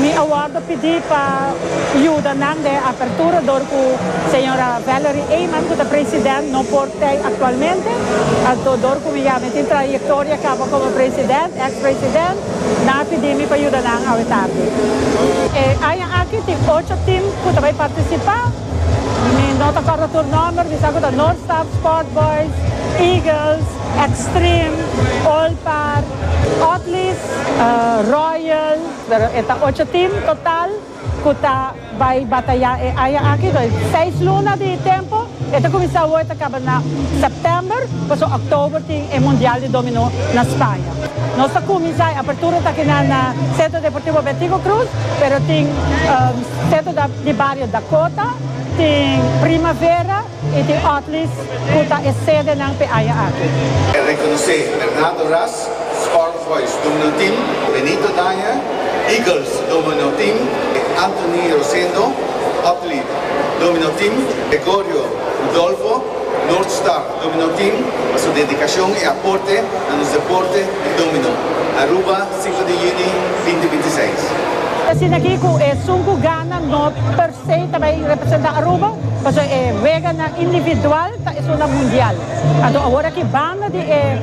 Mi a wordo pidi pa yuda nan den apertura dor cu Señora Valerie Eman cu ta President no por t'ei actualmente. Anto dor cu mi ya mi tin trayectoria caba como President, ex President, nan a pidi mi pa yuda nan awe tardi. E aña aki tin ocho team cu ta bay participa. Mi no ta corda tur nomber, mi sa cu ta North Star, Sport Boys, Eagles. Extreme, Olpar, Otlist, Royal, pero e ta ocho team total cu ta bay bataya e aña aki, toer seis luna di tempo, e ta cuminsa awo e ta caba na September, pasobra October tin e Mundial di Dominó na Spaña. Nos ta cuminsa e apertura ta kinan na Centro Deportivo Betico Cruz, pero tin Centro di Barrio Dakota, tin Primavera, Y tin otlis cu ta e sedenan p'e aya aki. E reconocé Bernardo Ras, Spark Voice Domino Team, Benito Daya, Eagles Domino Team, e Anthony Rosendo, Otlied Domino Team, Gregorio Rudolfo, North Star Domino Team, pa su dedicacion y aporte na nos deporte di domino, Aruba Symphony Juni binte binti seis. Asina aquí cu esun cu gana no. Sei ta bay representa Aruba pasobra e weganan individual ta esunnan mundial. Anto awor aki banda di e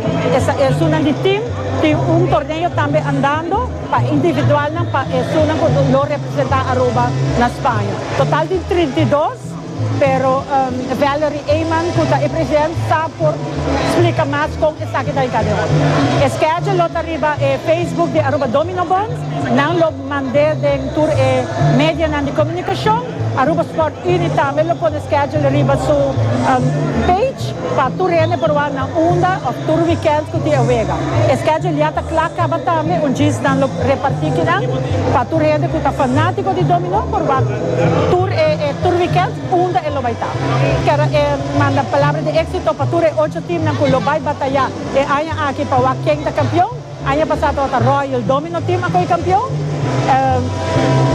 esunnan di team tin un torneo tambe andando pa individualnan pa esunnan cu lo representa Aruba na Spaña. Total tin trinta i dos pero Valerie Eyman cu ta e president sa por splica mas con esaki ta yega den ora. E schedule lo ta riba e Facebook di Aruba Dominobond. Nan lo. Mand'é den tur e medianan di komunikashon. Aruba Sport Unie tambe lo pone schedule riba su page pa tur hende por wak nan unda òf tur wikènt ku tin e wega. E schedule ya ta kla kaba tambe un djis nan lo repartí kinan pa tur hende ku ta fanátiko di dominó por wak tur e tur wikènt unda e lo bai ta. Kèr e manda palabra di éksito pa tur e ocho teamnan ku lo bai batayá e aña aki pa wak ken ta kampion. Aña pasá tabata Royal Domino Team a koe kampion.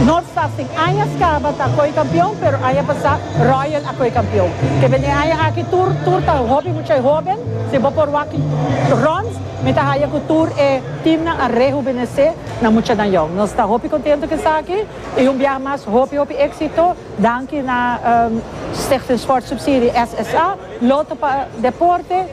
North Staff tin añas kaba ta koe kampion pero aña pasá Royal a koe kampion. Te bende aña aki tur tur ta hopi muchai hoben. Si bo por wak runs mi ta haya ku tur e teamnan a rehubenesé na mucha nan yon. Nos ta hopi kontentu ku esaki i un biaha mas hopi hopi éksito. Danki na Stichting Sportsubsidie, SSA, Lotto pa Deporte.